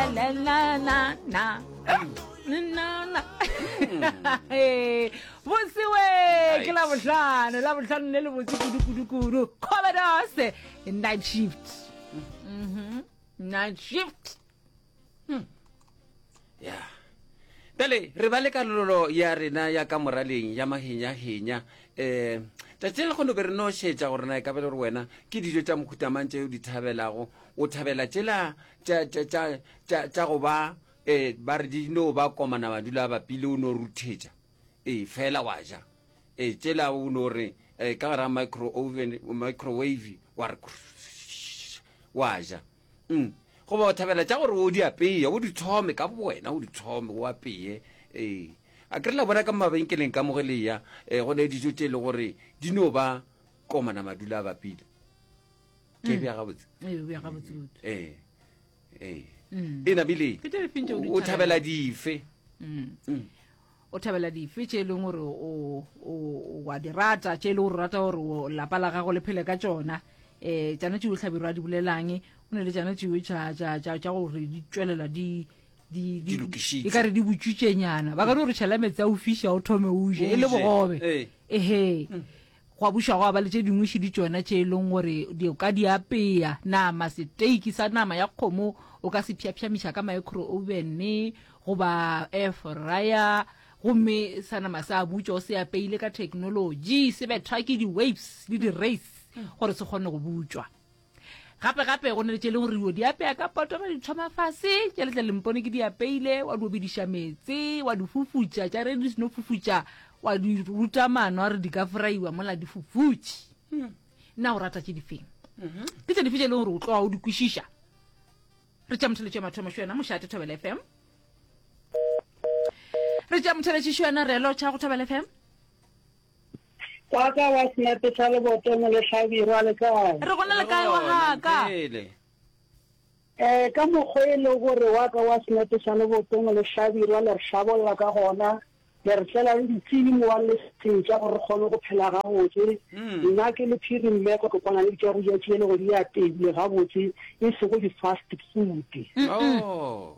na na na na nnana Eh, botse we ke la bohlano la bohlano le le botse kudu-kudu-kudu commodores night shift Mhm. night shift ya bjale re ba le kalololo ya rena ya ka moraleng ya mahenyahenya um tšatši le kgono be re no šetša gore na e ka be le gore wena ke dijo tša mokhutamang tšeo di thabelago o thabela tšela tša tša tša tša tša go ba eh ba re di no ba komana madula a bapile o no ruthetša eh fela wa ja eh tšela o no re eh ka gara micro oven microwave wa re wa ja mm goba o thabela tša gore o di apeye o di thome ka bowena o di thome o apeye eh a kre la bona ka mabenkeleng ka moge leya eh go ne dijo tše e le gore di no ba komana madula a bapile ke mm. bja gabotse ee ee e namile o thabela dife o thabela dife tše e leng gore wa di rata tše e le gore o rata gore lapa la gago le phele ka tsona um tšana tšeo tlhabiro a di bolelang o ne le tšana tšeo tša gore di tswelela di e kare di botswitšenyana ba ka di gore tšhela metsi a o fiša o thome o je e le bogobe ehe mm. Gwa buša gwa ba le tše dingwe šidi tšona tše e leng gore di o ka di apea. Nama, seteiki sa nama ya kgomo o ka se pšhapšhamiša ka maekroovene goba air fryer gomme sa nama se a butšwa o se apeile ka theknolotši, se bethwa ke di-waves le di-rays gore se kgone go butšwa. Gape gape go na le tše leng gore o di apeya ka poto ba di thoma fase tša letla lempone ke di apeile wa di obediša metse wa di fufutša tša re di seno fufutša wa di ruta mano a re di ka fraiwa mola di fufutše hmm. nna o rata tše difeng mhm. ke tse dife tše leng gore o tloa o di kwešiša re tša motheletšo ya mathomo xe yona mošate thobela f m re tša motheletšišo yona re lotšha go thobela f m Wa ka wa senepe sa leboto mo lehlabirwa le kae? Re gona le kae wa ga ka? Eh, ka mokgwa e le gore wa ka wa senepe sa leboto mo lehlabirwa le re hlabolla ka gona, le re tlela le ditsedi mo wa le setša gore re kgone go phela gabotse. Nna ke le phiri mmeko ke kwana le ditša go ja tše le go di apeile gabotse e sego di-fast food. Oh.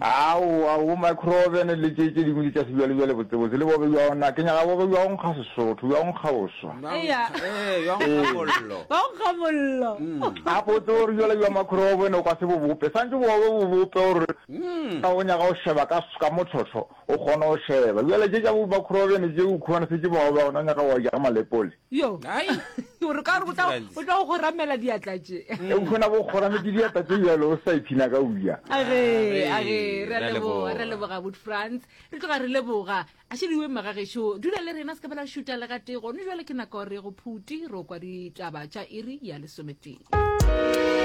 Aowa, bo microven le tše tše dingwe ke tša sebjalebjale botsebotse, le bobe bja ona. Ke nyaka bobe bja go nkga Sesotho, bja go nkga boswa. Eya. Ee, bja go nkga mollo. Bja go nkga mollo. A ko o tsebe gore bjale bja microven o ka se bo bope, swantše bobe bo bope gore ka go nyaka go šeba ka ka mo tlhohlo o kgone go šeba. Bjale tše tša bo microven tše o khumanese ke bobe ona o nyaka go wa ja ka malepole. yo o re ka gore o tla o tla go goramela diatla tše e khona go gorametse diatla tše jalo o sa iphina ka uya age age re a leboga re a leboga wood france re tloga re leboga a šediwe magagesho dula le rena se ka bela šuta le gate gone jale ke nako re go phuti ro kwa ditaba tša iri ya lesometee